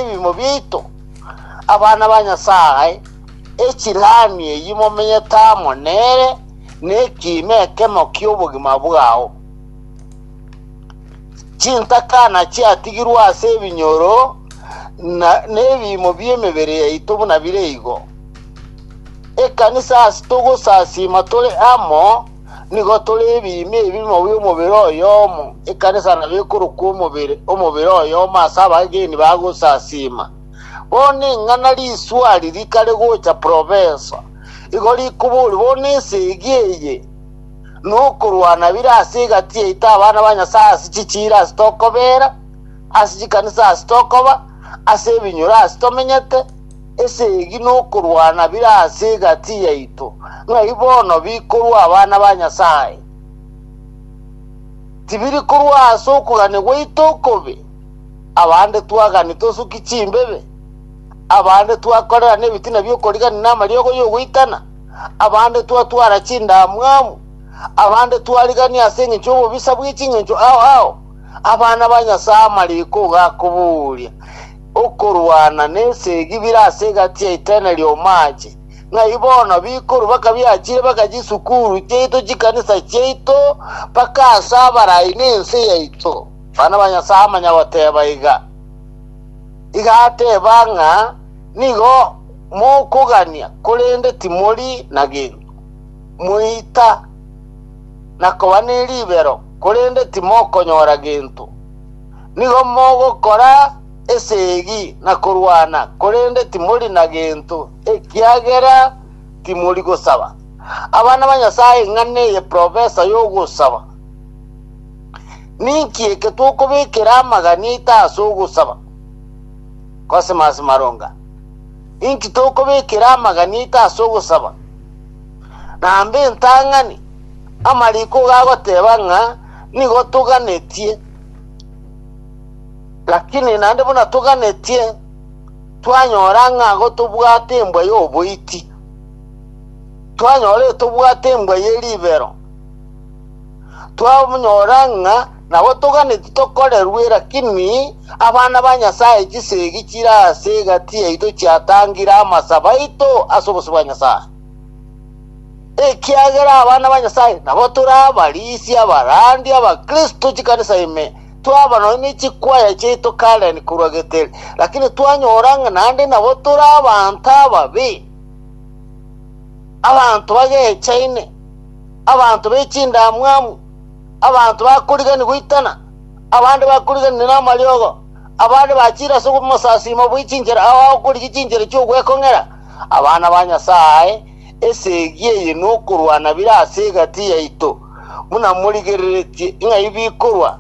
ebimo biaito, abana ba Nyasae, echilami eyio momenyete amo nere nekiimo ekemo ki'obogima bwao. Chintakana chiatigirwe ase ebinyoro na nebimo bi'emebere yaito buna bire igo. Ekanisa ase togosasima tore amo Nigo tore ebiimi ebimo bi'omobere oyomo, ekanisa nabo ekorokwa omobere, omobere oyomo ase abageni bagosasiima. Bono ing'ana riswari rikare gocha profesa, igo rikoboria bono esegi eye nokorwana bire ase egati yaito abana ba Nyasae ase chichiira ase tokobeera, ase chikanisa ase tokoba, ase ebinyoro ase tomenyete, Esegi nokorwana bire ase egati yaito, ng'ai bono bikorwa abana ba Nyasae? Tibiri korwa ase okogania gwaito okobe? Abande twagani tosuki chimbebe, abande twakorerana ebitina bi'okorigania namariogo y'ogoitana, abande twatwara chindamwamu, abande twarigania ase engencho y'obobisa bwe chingencho ao ao, abana ba Nyasae amariko gakobooria. okorwana nesegi bire ase egati ya itaine ri'omaache, ng'ai bono bikorwa bakabiachire baka chisukuru chiaito chikanisa chiaito mpaka ase abarai nense yaito. Abana ba Nyasae amanya goteba iga, iga ateba ng'a nigo mokogania korende timori na gento, moita na koba neribero korende timokonyora gento. Nigo mogokora esegi na korwana, korende timori na gento, ekiagera timori gosaba. Abana ba Nyasae ng'a neye profesa y'ogosaba. Ninki eke tokobekera amagani aito ase ogosaba? Cosmas Maronga. Inki tokobekera amagani aito ase ogosaba? Namba entang'ani, amariko iga agoteba ng'a nigo toganetie. Lakini naende buna toganetie, twanyora ng'a igo tobwate embwa y'oboiti, twanyora tobwate embwa ye ribero, twanyora ng'a nabo toganetie tokorerwe, lakini abana ba Nyasae chisegi chire ase egati yaito chiatangire amasabo aito ase obosio bwa Nyasae. ekiagera abana ba Nyasae nabo tore abarisi abarandi abakristo chikanisa ime twaba nonya ne chikwaya chiaito Karen korwa Geteri lakini twanyora ng'a naende nabo tore abanto ababe abanto bagechaine abanto be chindamwamu abanto bakorigani goitana abande bakoriganire namariogo abande bachire ase omosasima bwe chinchera abakorigia chinchera chi'ogwekong'era Abana ba Nyasae, esegi eye nokorwana bire ase egati yaito, buna morigereretie, ng'ai bikorwa?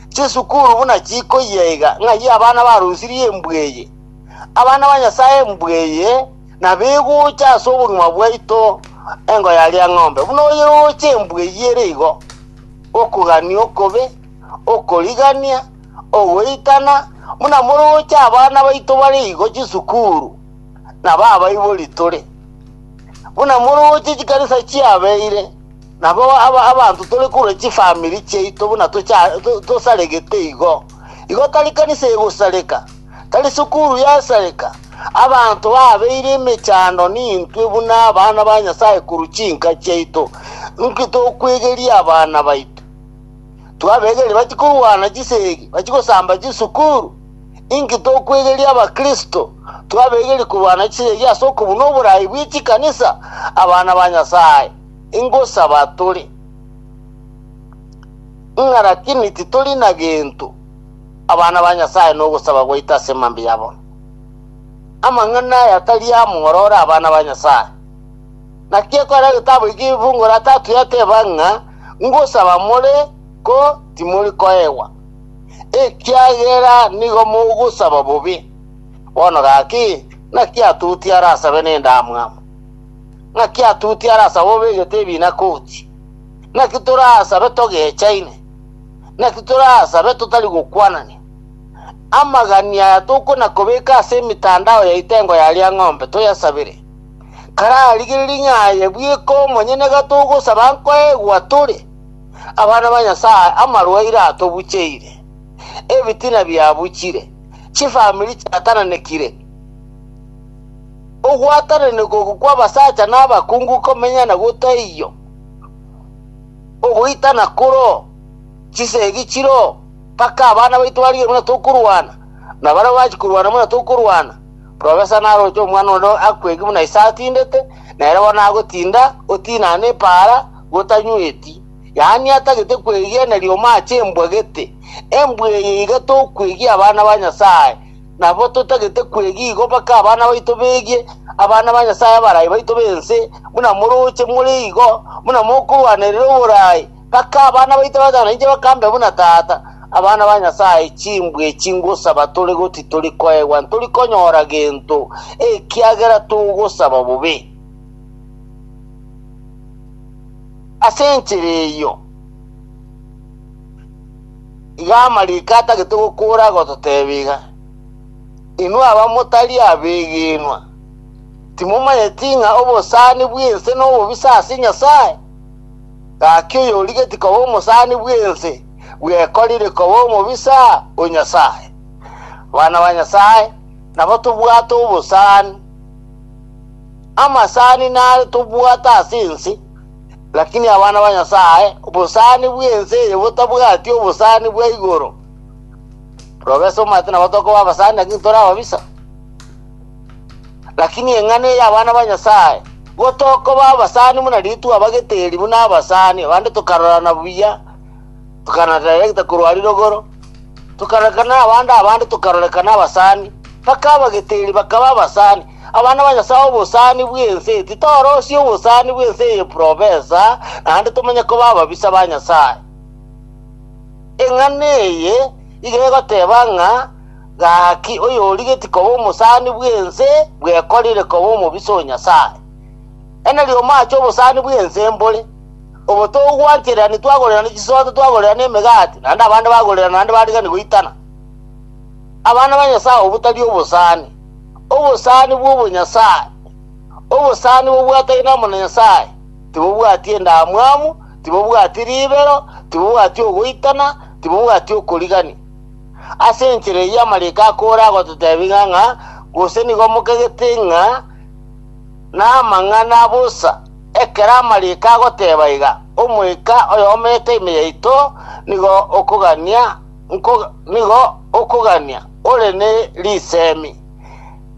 Chisukuru buna chikoyia iga, ng'ai abana barusirie embwa eye? Abana ba Nyasae embwa eye nabegocha ase obogima bwaito engo yaria ng'ombe, buna oyeroche embwa eyio ere igo. Okogania okobe, okorigania, ogoitana, buna moroche abana baito bare igo chisukuru. nabo abaibori tore, buna moroche chikanisa chiabeire, nabo aba- abanto tore korwa chifamiri chiaito buna tocha- to- tosaregete igo. Igo tari kanisa egosareka, tari sukuru yasareka, abanto babeire emechando nintwe buna abana ba Nyasae korwa chinka chiaito. Inki tokwegeria abana baito? Twabegeria bachi korwana chisegi, bachi gosamba chisukuru? Inki tokwegeria abakristo twabegeria korwa na chiregi ase okobuna oboraai bwe chikanisa? Abana ba Nyasae, ingosaba tore ng'a lakini titori na gento. Abana ba Nyasae nogosaba gwaito ase mambia ya bono. Amang'ana aya tari amoro ore abana ba Nyasae. Naki ekore egetabu eke Ifunguro la Tatu yateba ng'a, Ngosaba more, ko timori koegwa. ekiagera nigo mogosaba bobe. Bono gaki, naki atuti arasabe nendamwamu? Naki atuti arasabe obegete ebiina koti? Naki torasabe togechaine? Naki torasabe totari gokwanania? Amagani aya tokona kobeka ase emetandao ya etengo ya Liang'ombe toyasabere. Kararigererie ng'a aye bweka omonyene gatogosaba nkoegwa tore. Abana ba Nyasae amarwaire atobucheire, ebitina biabuchire, chifamiri chiatananekire, ogwatananekwa oko kw'abasacha na abakungu komenyana gotaiyo, ogoitana koro, chisegi chiro, mpaka abana baito barigerwe buna tokorwana, na baria bachia korwana buna tokorwana, profesa naroche omwana onde akwegi buna ise atindete, na ere bono agotinda, otinane epaara, gotanyweti, yaani atagete kwegena rioma ache embwa gete, embwa eye iga tokwegia abana ba Nyasae, nabo totagete kwegia igo mpaka abana baito begie abana ba Nyasae abarai baito b'ense, buna moroche more igo, buna mokorwanerera oborai, mpaka abana baito batano inche bakambe buna tata. Abana ba Nyasae, chimbwa echi ngosaba tore goti tori koegwa, ntori konyora gento, ekiagera togosaba bobe. Ase enchera eyio, iga amariko atagete gokora agototeeba iga, Inwe abamotari abegenwa, timomanyeti ng'a obosani bw'ense nobobisa ase Nyasae? Gaki oyorigetie koba omosani bw'ense bwekorire koba omobisa o Nyasae. Abana ba Nyasae nabo tobwate obosani. Amasani nare tobwate ase ense, lakini abana ba Nyasae obosani bw'ense eye botabwati obosani bwa igoro. Robe ase omanyete nabo tokoba abasani lakini tore ababisa. Lakini eng'ana eye abana ba Nyasae, igo tokoba abasani buna ritwabagete eri buna abasani, abande tokarorana buya, tokanadirecta korwa rirogoro, tokarorekana abande abande tokarorekana abasani, mpaka abagete eri bakaba abasani. Abana ba Nyasae obosani bw'ense eye titorosie obosani bw'ense eye profesa, naende tomenye koba ababisa ba Nyasae. Eng'ana eye iga egoteba ng'a gaki oyorigetie koba omosani bw'ense bwekorire koba omobisa o Nyasae. Ene riromo ache obosani bw'ense mbore, obo togwanchererani twagorerana chisooto, twagorerana emegati, naende abande bagorerana naende bariganigwa itana. Abana ba Nyasae obo tari obosani. Obosani bw'obonyasae. Obosani bobwatari namo na Nyasae, tibobwati endamwamu, tibobwati ribero, tibobwati ogoitana, tibobwati okorigania. Ase enchera eyio amariko akoora agototebia ng'a ng'a gose nigo mokegete ng'a namang'ana bosa, ekero amariko agoteba iga, Omoika oyomo ekaime yaito nigo okogania, nigo okogania. Ore ne risemi,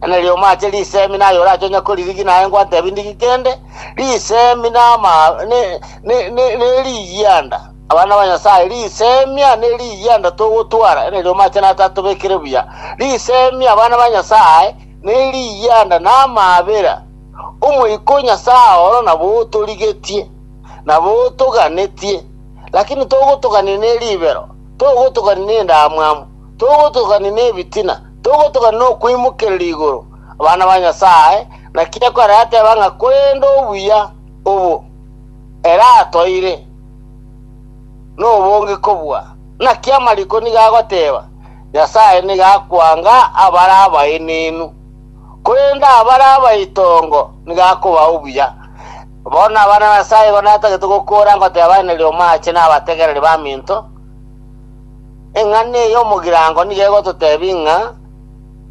na riromo ache risemi, naye orache onye koririgi, naye ngwantebi ndigi kende, risemi nama ne, ne, ne, ne rigianda. Abana ba Nyasaye, risemia ne rigianda togotwara, na riromo ache natatobekire buya. Risemi abana ba Nyasaye, ne rigianda namabera. Omoika o Nyasaye oro nabo otorigetie, nabo otoganetie, lakini togotogania ne ribero, togotogania ne endamwamu, Togotogania nebitina, togotogania nokoimokereria igoro abana ba Nyasae, naki ekero yateba ng'a korende obuya obo ere atoire, nobonge kobua. Naki amariko nigo agoteba, Nyasae nigo akwanga abare abaenenu, korende abare abaitongo nigo akobaa obuya. Bono abana ba Nyasae igo natagete gokoora ngoteba, Neri omoache nabategereri baminto. Eng'ana eye y'omogirango nigo egototebia ng'a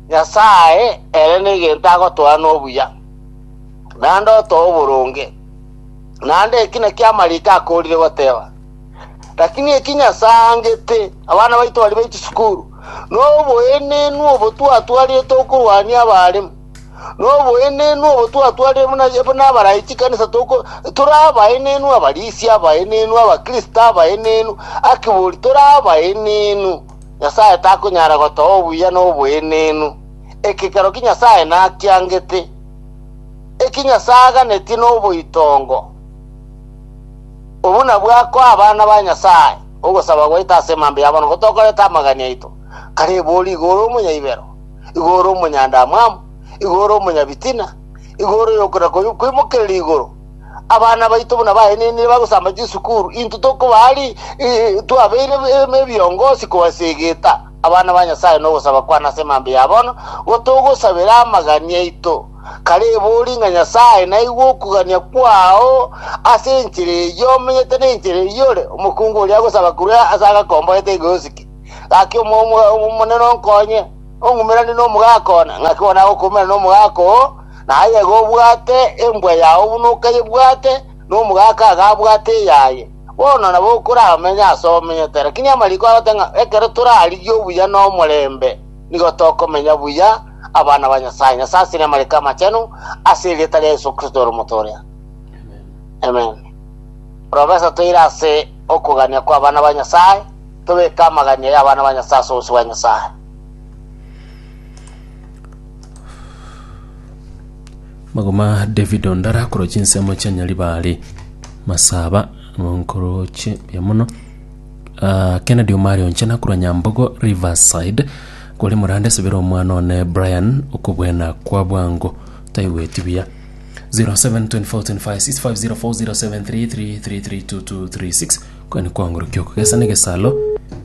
Nyasae ere negento agotoa nobuya, naende otoa oboronge. Naende eki nakio amariko akoorire goteba. Lakini eki Nyasae aangete, abana baito baria be chisukuru, noboenenu obo twatwarete okorwania abaremu, Noboenenu obo twatwarire buna buna abarai chikanisa toko tore abaenenu abarisia abaenenu abakristo abaenenu akibori tore abaenenu Nyasaye takonyara gotoa obuya na oboenenu ekekero ki Nyasaye nakiangete eki Nyasaye aganetie noboitongo obu nabwo akoa abana ba Nyasaye ogosaba gwaito ase emambe ya bono gotokorete amagani aito kare ebori igoro omonyaibero igo ore omonyandamwamu, igo ore omonyabitina, igo ore oyokora koy- koimokerera igoro. Abana baito buna baenenire bagosamba chisukuru, intwe tokobaa ri i- twabeire em- ebiongosi kobasa egeta. Abana ba Nyasaye nogosaba kwane ase emambe ya bono, gotogosabera amagani aito. Kare ebori ng'a Nyasaye naigwe okogania kwao ase enchera eyio omenyete na enchera eyio ore, omokungu oria agosaba korwa ase agakomboete iga osike. Gaki omo- omo- omonene onkonye, ong'umeranie n'omogaka one, ng'aki bono nagokoumera n'omogaka oo, na aye iga obwate embwa yao buna okayebwate, na omogaka iga abwate eyaye. Bono nabo okoramenye ase omenyete. Lakini amariko agote ng'a ekero torarigie obuya na omorembe, nigo tokomenya buya abana ba Nyasae. Nyasae asire amariko amachenu ase erieta ria Yesu Kristo ore omotoria. Amen. Profesa toire ase okogania kw'abana ba Nyasae. Tobeke amagania y'abana ba Nyasae ase obosio bwa Nyasae. Magoma David Ondara korwa chinsemo chia Nyaribari Masaba nkoroche buya mono Ah, Kennedy Omari Onchena korwa Nyambogo Riverside kore morande sebera omwana one Brian okobwena kwa bwango taigweti buya 0724256504 0733332236 Kogani kwangorokia oko gesa negesalo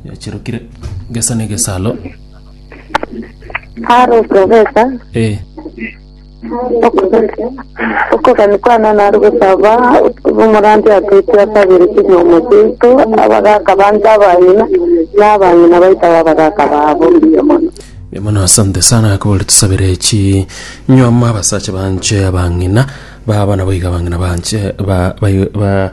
yachirokire gesa negesalo Haro okogesa, eh, okogesa, okogani kwana naro gosaba omorandia atwete asabire chinyuomo chiaito, abagaka bande abang'ina, na abang'ina baito abe abagaka babo. Mbuya mono. mbuya mono asante sana akobore tusabire chi nywama abasacha banche abang'ina baba nabo iga abang'ina banche ba, ba, ba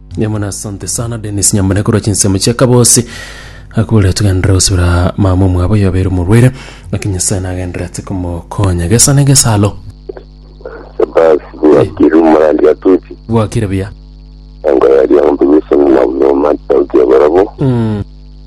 Yamana asante sana Dennis Nyambane korwa chinsemo chia Kabosi akure tugendera gusubira mama omwabo yobere omorwere naki Nyasaye nagenderete komokonya gesa na egesalo Basi bwakire omorandi atuti bwakire buya engo yaria ng'ombe gweseng'uma buna omantao kia barabwo mm.